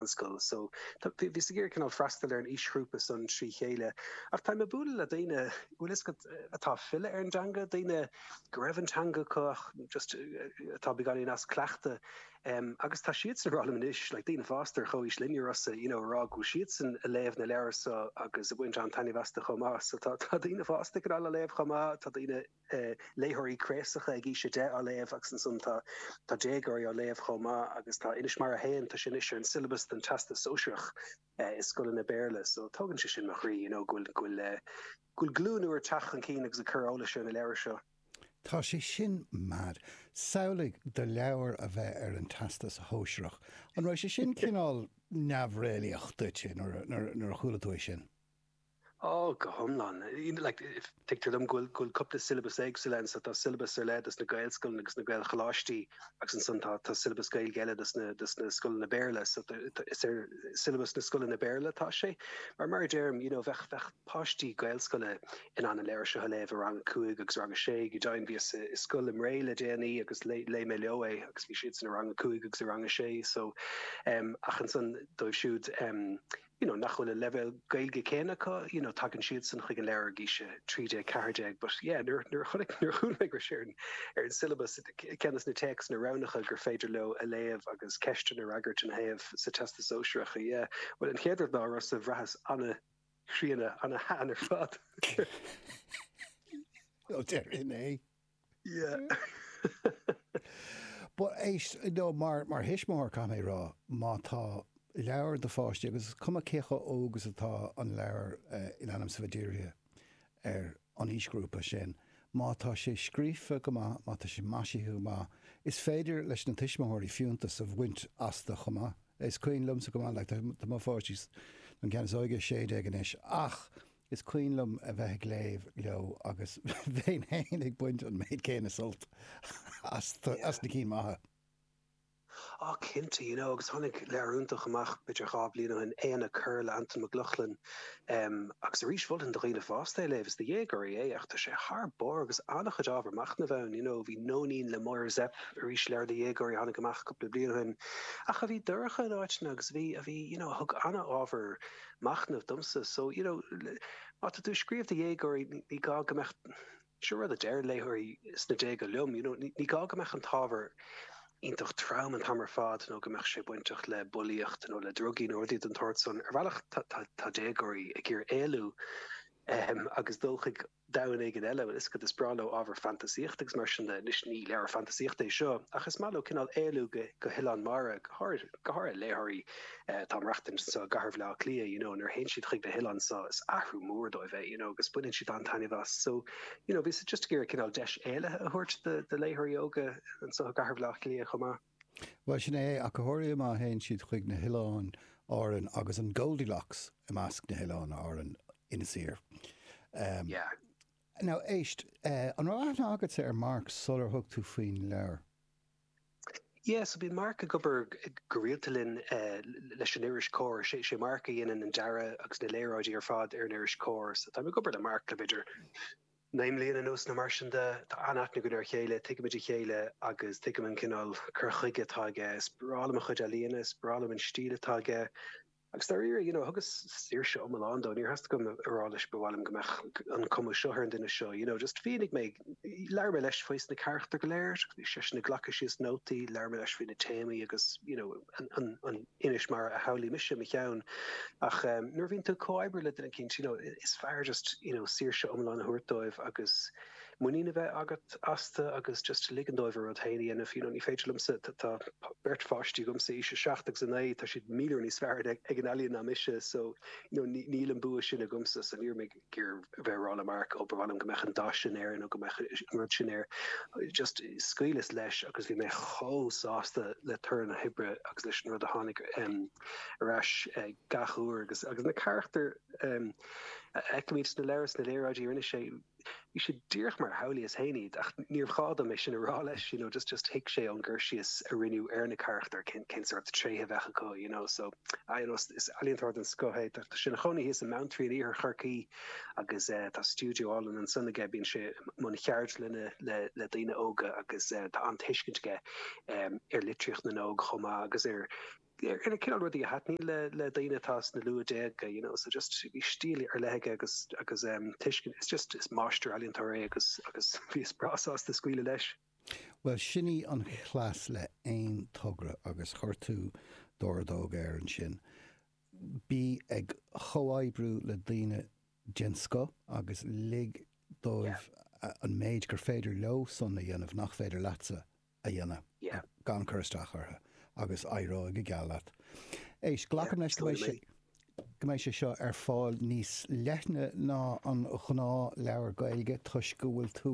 So bhíos ag iarraidh cineál freastal ar an aoisghrúpa san trí chéile ach táim ag bualadh le daoine, bhfuil fhios agat, atá ag filleadh ar an dteanga, daoine go raibh an teanga acu ach just atá beagáinín as cleachtadh em agus tá siadsan ag rá liom anois, like daoine fásta ar chomhaois linne, you know, ag rá go bhfuil siadsan ag léamh na leabhar so agus ag baint an-taitneamh astu chomh maith so tá daoine fásta ag cineál á léamh chomh maith, tá daoine ag. léitheoirí craosacha ag aois 10 á léamh agus ansan tá tá déagóirí á léamh chomh maith agus tá Inis Mara a hAon, tá sé anois ar an siollabas don Teastas Sóisearach i scoileanna Béarla so tógann sé sin mo chroí you know go bhfuil go bhfuil eh go bhfuil glúin úr ag teacht chun cinn agus ag cur eolais ar na leabhair seo. Tá sé sin mad. Samhlaigh do leabhar a bheith ar an Teastas Shóisearach. An raibh sé sin cineál neamhréalaíoch duit nuair a nuair a nuair a chuala tú é sin? Ó, go hiomlán. Tuigtear dom go bhfuil cúpla syllabus éagsúil ann, so tá syllabus ar leith dos na Gaelscoileanna agus na Gaelcholáistí agus ansan tá syllabus Gaeilge eile dos na scoileanna Béarla, so is ar syllabus na scoileanna Béarla atá sé. Mar, mar a deirim, you know, bheadh páistí Gaelscoile in ann an leabhar seo a léamh i rang a cúig agus rang a sé go deimhin. Bhíos i scoil i mBré le déanaí agus léigh mé leo é agus bhí siadsan i rang a cúig agus i rang a sé, so, em, ach ansan dóibh siúd, em, you know, nach bhfuil an leibhéal Gaeilge céanna acu, you know, tagann siadsan chuig an leabhar ag aois a 13 14, but yeah, nuair, nuair a chonaic, nuair a chuala mé go raibh sé ar an, ar an syllabus, ceann de na téacs, na roghnacha gur féidir leo a léamh agus ceisteanna a fhreagairt ina thaobh sa Teastas Sóisearach, yeah, bhuel, an chéad rud ná bhraitheas an-chríonna, an-shean ar fad. Bhuel, sin é. Mar thuismitheoir, caithfidh mé a rá, má tá leabhar do pháistí, agus is cuma cé chomh óg is atá an leabhar in ainm is bheith dírithe ar an aoisghrúpa sin, má tá sé scríofa go maith, má tá sé maisithe go maith, is féidir leis na tuismitheoirí fiúntas a bhaint astu chomh maith. Is cuimhin liomsa go maith, tá mo pháistí, an ceann is óige, sé déag anois, ach. Is cuimhin liom a bheith ag léamh leo agus bheinn fhéin ag baint an méid céanna sult as na cinn mhaithe. Yeah. Oh cinnte, you know agus tháinig leabhar iontach amach b'fhéidir dhá bhliain ó shin, Éanna Corr le Antain Mac Lochlainn em agus arís mholfainn do dhaoine fásta é a léamh, is do dhéagóirí é ach tá sé thar barr agus an-chuid ábhar machnaimh ann, you know bhí Nóinín le Máire Zepf arís leabhar do dhéagóirí a tháinig amach cúpla bliain ó shin ach a bhí dorcha in áiteanna agus a bhí a bhí you know a thug an-ábhar machnamh domsa. So, you know, má tá tú ag scríobh do dhéagóirí, ní gá go mbeadh, seo rud a deireann léitheoirí sna déaga liom, you know, ní gá go mbeadh an t-ábhar iontach trom an t-am ar fad nó go mbeadh sé bainteach le bulaíocht nó le drugaí nó rudaí den tsórt san. Ar bhealach, tá déagóirí ag iarraidh éalú agus dul chuig domhan éigin eile, you know, is is breá leo ábhar fantasaíochta agus mar sin de. Anois, ní leabhar fantasaíochta é seo, ach is maith leo cineál éalú go go hoileán mara, go háirithe go háirithe léitheoirí eh atá ag maireachtaint anseo i gcathair Bhaile Átha Cliath you know nuair a théann siad chuig na hoileáin seo is athrú mór dóibh é you know agus baineann siad an-taitneamh as so you know bhíos just ag iarraidh cineál deis éalaithe a thabhairt do do léitheoirí óga anseo i gcathair Bhaile Átha Cliath chomh maith. Bhuel, sin é, ach go háirithe má théann siad chuig na hOileáin Árann agus an Goldilocks i measc na hOileáin Árann Inis Oírr. Yeah. Now, éist, an raibh aithne agatsa ar Mark sular thug tú faoin leabhar? Yeah, so bíonn Mark ag obair go rialta linn leis an iris Comhar. Sé Mark a dhéanann an dearadh agus na léaráidí ar fad ar an iris Comhar, so táim ag obair le Mark le b'fhéidir Naoi mbliana anuas nó mar sin de, tá an-aithne againn ar a chéile, tuigimid a chéile agus tuigim an cineál cur chuige atá aige. Is breá liom a chuid ealaíona, is breá liom an stíl atá aige agus dáiríre, you know, thugas saoirse iomlán dó, níor theastaigh uaim a rá leis 'ba mhaith liom go mbeadh an cuma seo ar an duine seo', you know, just mhínigh mé, labhair mé leis faoina charachtair go léir, bhí seisean ag glacadh síos nótaí, labhair mé leis faoi na téamaí agus, you know, an. Inis mar a shamhlaigh mise i mo cheann ach nuair a bhíonn tú ag comhoibriú le daoine den scoth you know is fearr just you know saoirse iomlán a thabhairt dóibh agus muinín a bheith agat astu agus just ligean dóibh a rud féin a dhéanamh you know ní féidir liomsa tá beirt pháistí agamsa aois 7 agus 9 tá siad míle uair níos fearr ag an ealaíon ná mise so you know níl an bua sin agamsa so ní raibh mé chun a bheith ag rá le Mark, ó ba mhaith liom go mbeadh an dath sin air nó go mbeadh an rud sin air. Just scaoileas leis agus bhí mé chomh sásta le toradh na hoibre agus leis an rud a tháinig ar ais gach uair agus agus na carachtair a fheicimid sna leabhair, sna léaráidí a rinne sé, bhí siad díreach mar a shamhlaíos féin iad ach níorbh ghá dom é sin a rá leis, you know, just just thuig sé ón gcur síos a rinneadh ar na carachtair cén cén sórt tréithe a bheadh acu, you know, so. You know, is ealaíontóir den scoth é. Tá sé ina chónaí thíos i mBeanntraí in iarthar Chorcaí agus tá stiúideo álainn ansan aige. Bíonn sé i mbun cheardlainne le daoine óga agus tá an-tuiscint aige ar litríocht na n-óg chomh maith agus ar na cineál rudaí a thaitníonn le daoine atá sna luath déaga, you know. So just bhí stíl ar leith aige agus tuiscint, is just, is máistir-ealaíontóir é agus bhíos breá sásta scaoileadh leis. Bhuel, sin í an chleas le haon togra agus chuir tú d'ordóg air ansin. Bí ag chomhoibriú le daoine den scoth agus lig dóibh an méid gur féidir leo-san a dhéanamh nach féidir leatsa a dhéanamh, gan cur isteach orthu, agus éireoidh go geal leat. Éist, glacaim leis go mbeidh sé. go mbeidh sé seo ar fáil níos leithne ná an gnáthleabhar Gaeilge toisc go bhfuil tú,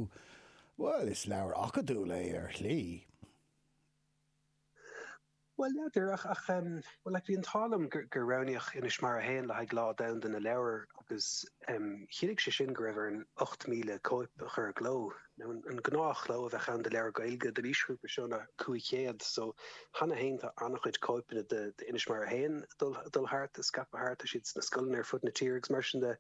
bhuel, is leabhar acadúil é ar shlí. Bhuel, n'fheadar, ach bhuel, like, bhí an t-ádh liom gur roghnaíodh Inis Mara 1 le haghaidh Lá Domhanda na Leabhar agus chinntigh sé sin go raibh orainn 8,000 cóip a chur i gcló. nó an gnáthchló a bheadh ann do leabhar Gaeilge don aoisghrúpa seo ná 500. So, cheana féin tá an-chuid cóipeanna de Inis Mara 1 ag dul thart, ag scaipeadh thart, tá siad sna scoileanna ar fud na tíre agus mar sin de.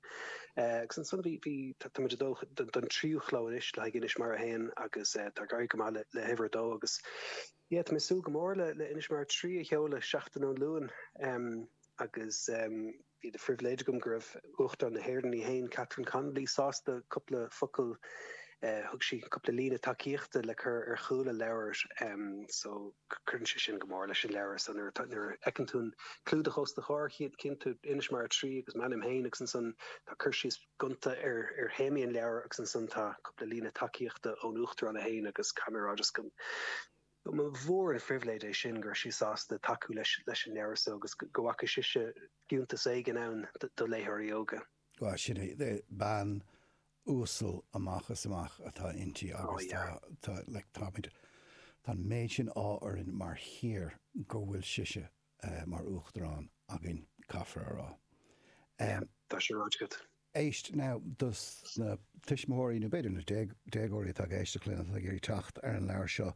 Agus ansan bhí, bhí, tá, táimid ag dul don tríú chló anois le haghaidh Inis Mara 1 agus tá ag éirí go maith le, le huimhir a dó agus yeah, tá mé ag súil go mór le, le Inis Mara 3 a sheoladh seachtain ón Luan. Agus. Bhí de phribhléid agam go raibh Uachtarán na hÉireann í fhéin, Catherine Connolly, sásta cúpla focal, thug sí cúpla líne tacaíochta le cur ar chúl an leabhair so cuireann sé sin go mór leis an leabhar so nuair a fheiceann tú an clúdach os do chomhair chíonn tú Inis Mara 3 agus m'ainm fhéin agus ansan tá cur síos gonta ar théamaí an leabhair agus ansan tá cúpla líne tacaíochta ón Uachtarán í fhéin agus caithfidh mé a rá just go. mba mhór an phribhléid é sin go raibh sí sásta tacú leis an leabhar so agus go bhfaca sise fiúntas éigin ann do léitheoirí óga. Bhuel, sin é. Bean uasal amach is amach atá inti agus tá, tá, like, táimid, tá an méid sin ádh orainn mar thír go bhfuil sise mar Uachtarán againn, caithfear a rá. Em. Tá sé ráite agat. Éist, now, dos na tuismitheoirí, nó b'fhéidir na déagóirí atá ag éisteacht linn, atá ag iarraidh teacht ar an leabhar seo,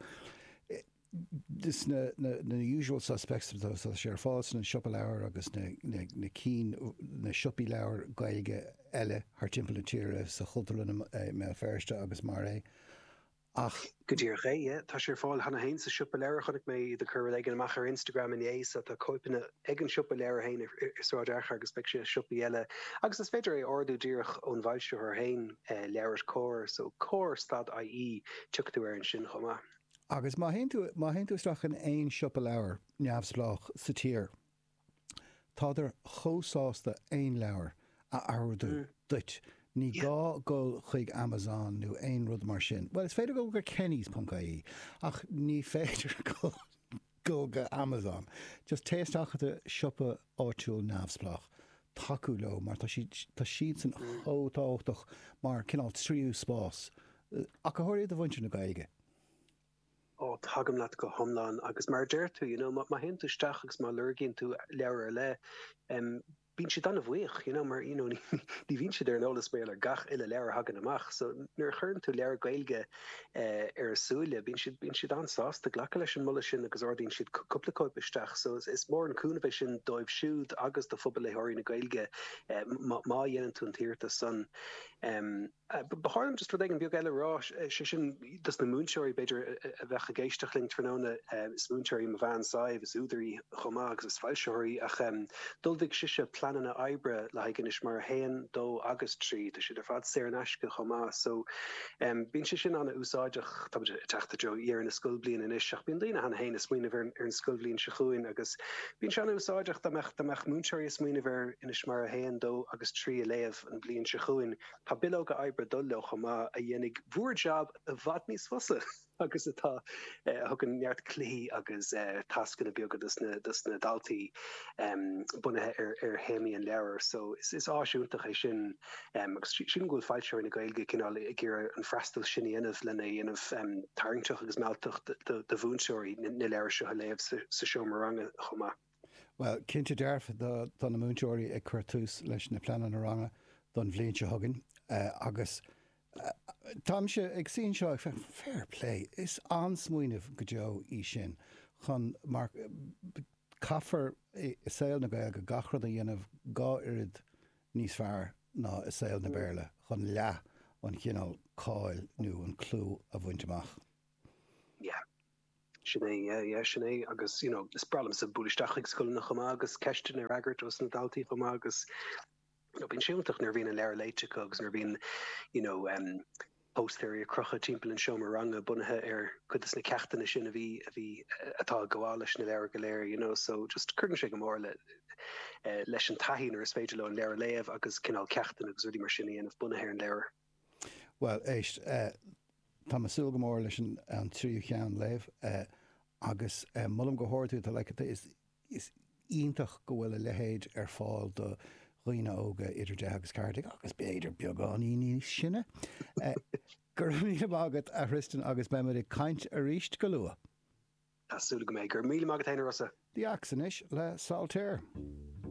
is sna usual suspects atá sé ar fáil sna siopa leabhar agus na cinn, na siopaí leabhar Gaeilge eile thart timpeall na tíre, sa Chultúrlann i mBéal Feirste agus mar é. Ach go díreach é, tá sé ar fáil cheana féin sa siopa leabhar, chonaic mé iad ag cur rud éigin amach ar Instagram inné, so tá cóipeanna ag an siopa leabhar féin i Sráid Fhearchair agus beidh sé i siopaí eile. Agus is féidir é a ordú díreach ón bhfoilsitheoir féin, LeabhairCOMHAR, so comhar stad IE, tiocfaidh tú air ansin chomh maith. Agus má théann tú isteach in aon siopa leabhar neamhspleách sa tír, Tádar chomh sásta aon leabhar a ordú duit, ní gá dul chuig Amazon nó aon rud mar sin. Bhuel, is féidir dul go Kennys ponc ie, ach ní féidir dul go Amazon. Just téigh isteach i do shiopa áitiúil neamhspleách, tacú leo, mar tá siad, tá siadsan chomh tábhachtach mar cineál tríú spás, ach go háirithe do mhuintir na Gaeilge. oh tagaim leat go hiomlán agus mar a deir tú you know má théann tú isteach agus má lorgaíonn tú leabhar ar leith em bíonn siad an-bhuíoch you know mar you know ní bhíonn siad ar an eolas maidir le gach uile leabhar a thagann amach so nuair a chuireann tú leabhar Gaeilge eh, ar a súile bíonn siad bíonn siad an-sásta glacadh leis an moladh sin agus ordaíonn siad cú- cúpla cóip isteach so is, is mór an cúnamh é sin dóibh siúd agus do phobal léitheoirí na Gaeilge eh, má má dhéanann tú an t-iarratas san em Ba chóir dom rud éigin beag eile a rá, sé sin dos na múinteoirí b'fhéidir a bheadh ag éisteacht linn tráthnóna, is múinteoir í mo bhean Sadhbh, is údar í chomh maith agus is foilsitheoir í ach d'ullmhaigh sise pleananna oibre le haghaidh Ainnis Mór 1, 2 agus 3, tá siad ar fad saor in aisce chomh maith so bíonn sé sin an-úsáideach. Táimid ag teacht i dtreo dheireadh na scoilbliana anois ach bíonn daoine cheana féin ag smaoineamh ar an scoilbhliain seo chugainn agus bíonn sé an-úsáideach dá mbeadh múinteoirí ag smaoineamh ar Ainnis Mór 1, 2 agus 3 a léamh an bhliain seo chugainn. Tá bileoga oibre ag dul leo chomh maith, a dhéanfaidh bhúr jab i bhfad níos fusa agus atá, a thugann neart cluichí agus tascanna beaga dos na daltaí bunaithe ar théamaí an leabhair. So, is áis iontach é sin agus sílim go bhfuil foilsitheoirí na Gaeilge cineál ag iarraidh an freastal sin a dhéanamh, lena dhéanamh tarraingteach agus mealltach do mhúinteoirí na leabhair seo a léamh sa seomra ranga chomh maith. Bhuel, cinnte dearfa tá na múinteoirí ag cur tús leis na pleananna ranga don bhliain seo chugainn agus táimse ag suí anseo ag féachaint, fair play, is an-smaoineamh go deo í sin chun mar caithfear i saol na Gaeilge gach rud a dhéanamh dhá oiread níos fearr ná i saol na Béarla chun leath an chineál cáil nó an clú a bhaint amach. Yeah. Sin é, yeah, yeah, sin é. Agus, you know, is breá liomsa bualadh isteach chuig scoileanna chomh maith agus ceisteanna a fhreagairt os na daltaí chomh maith agus, you know, bíonn sé iontach nuair a bhíonn an leabhar léite acu agus nuair a bhíonn, you know, em, póstaeirí ar crochadh timpeall an seomra ranga bunaithe ar cuid dos na ceachtanna sin a bhí, a bhí, atá ag gabháil leis na leabhair go léir, you know. So, just cuireann sé go mór le, eh, leis an taithí nuair is féidir leo an leabhar a léamh agus cineál ceachtanna agus rudaí mar sin a dhéanamh bunaithe ar an leabhar. Bhuel, éist, tá mé ag súil go mór leis an tríú ceann a léamh agus molaim go hard tú, tá, like, is iontach go bhfuil a leithéid ar fáil do dhaoine óga idir deich agus ceathair déag, agus b'fhéidir beagáinín níos sine. Go raibh míle maith agat, a Thristan, agus beimid ag caint arís go luath! Tá súil agam é. Go raibh míle maith agat féin, a Rossa! The Axe anois le Saltaire.